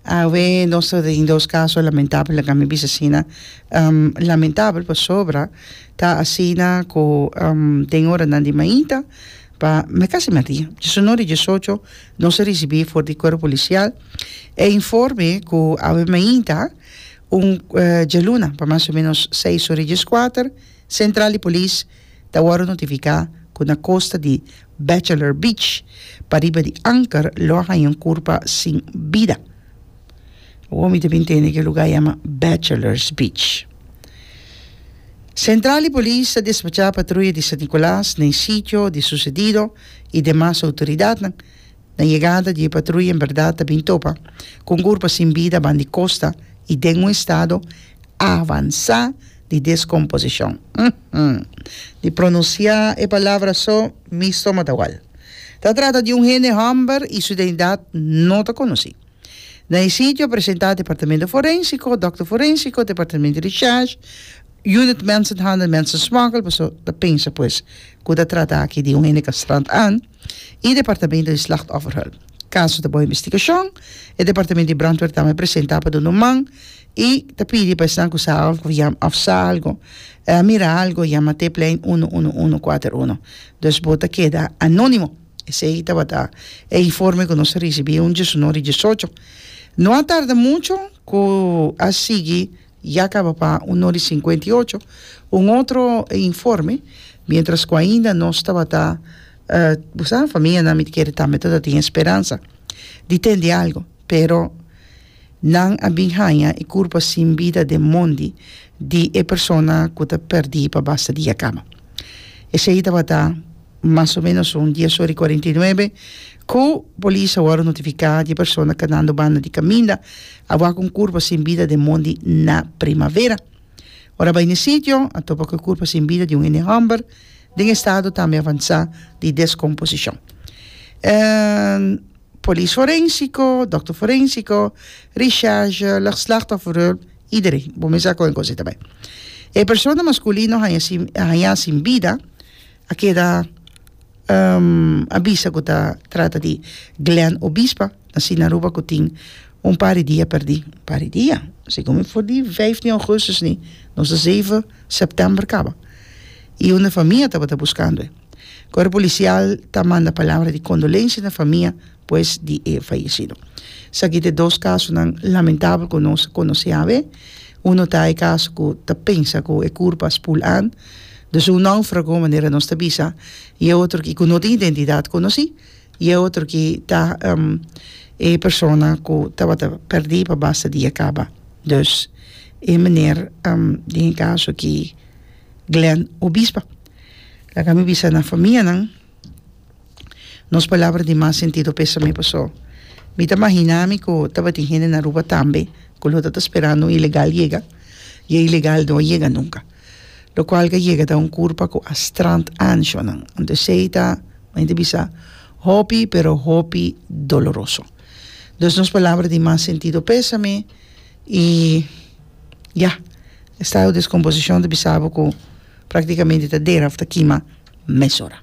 Awe nos ta den dos caso lamentable laga mi bisa asina lamentable pasobra ta asina cu den horanan di maita pa me casi mati diecinuebe y diesocho nos a ricibi for di cuerpo policial e informe cu awe maita un djaluna pa mas o menos seis ora y diescuater central di polis ta wòrdu notifiká ku na kosta di Bachelor Beach, pariba di Anker, lo a haña un kurpa sin bida. Awor mi ta bin tende ku e lugá yama Bachelors Beach. Sentral di Polis ta despachá patruya di San Nikolas na e sitio di susedido i demas outoridatnan Na yegada di e patruya en berdad ta bin topa cu un gurpa sin bida ban di costa y den un estado avansa di descomposicion. Umm. Di pronuncia e palabra so mi stoma ta wal. Ta trata di un hende homber y su identidad no ta conoci. Na e sitio a presenta Departamento Forensico, Dokter Forensico, Departamento di Charge, Unit Mensenhandel, Mensensmokkel, paso ta pensa pues cu ta trata aki di un hende castrant an. i Departamento di Slachtofferhulp. Kaso ta bou investigashon, e Departamento di Brandweer ta bai presentá pa Dun Numan i ta pidi pa esnan ku sa algu òf yam òf sa algu, mira algu, yama Tip Lijn unu unu unu kuater unu. Dus bo ta keda anónimo. Esei tabata e informe ku nos a risibí un diesunó di diesocho. No a tarda mucho ku a sigui Ya caba pa un no di cincuenta y ocho un otro informe, mientras cu ainda nos tabata, bo sa, famianan mi ta kere tambe ta tatin e speransa di tende algo, pero nan a bin haya e curpa sin bida den mondi di e persona cu ta perdi pa basta dia caba. Esey tabata mas o menos un dies ora y cuarenta y nuebe Cu Polis a worde notifica di e persona ca dando banda di caminda a wak un curpa sin bida den mondi na Primavera. Ora a bay n'e sitio a topa cu e curpa sin bida di un hende homber den estado tambe avansa di descomposicion. E Polis Forensico, Dokter Forensico, Recherche, Slachtofferhulp, iedereen bo mester a coge en consideracion. E persona masculino haya sin bida a keda a bisa ku ta trata di Glen Obispa na Sina Aruba ku tin un par di dia perdí, un par di dia segun mi for di vijf di augustus ni nos ta zeven sèptèmber kaba i un famia tabata buskando e kuerpo polisial ta manda palabra di kondolensia na famia pues di e fayesido esaki ta e dos kasonan lamentabel ku nos konosé awe uno ta e kaso ku ta pensa ku e kurpa a spul an. Dus un náufrago, manera nos ta bisa, i e otro ki ku no tin identidat konosí, i e otro ki ta e persona ku tabata pèrdí pa basta dia kaba. Dus e meneer den e kaso ki Glen Obispa laga mi bisa na famianan. nos palabra di mas sentido p'esa mi paso mi ta mahina mi ku tabatin hende na Aruba tambe ku lo ta ta sperando un ilegal yega y e ilegal no a yega nunka lo kual a yega ta un kurpa ku a strand anshonan anto esei ta mi ta bisa hopi pero hopi doloroso dus nos palabra di mas sentido p'esa mi. I ya, e stado deskomposishon ta bisa bo ku praktikamente ta dera òf ta kima mesora.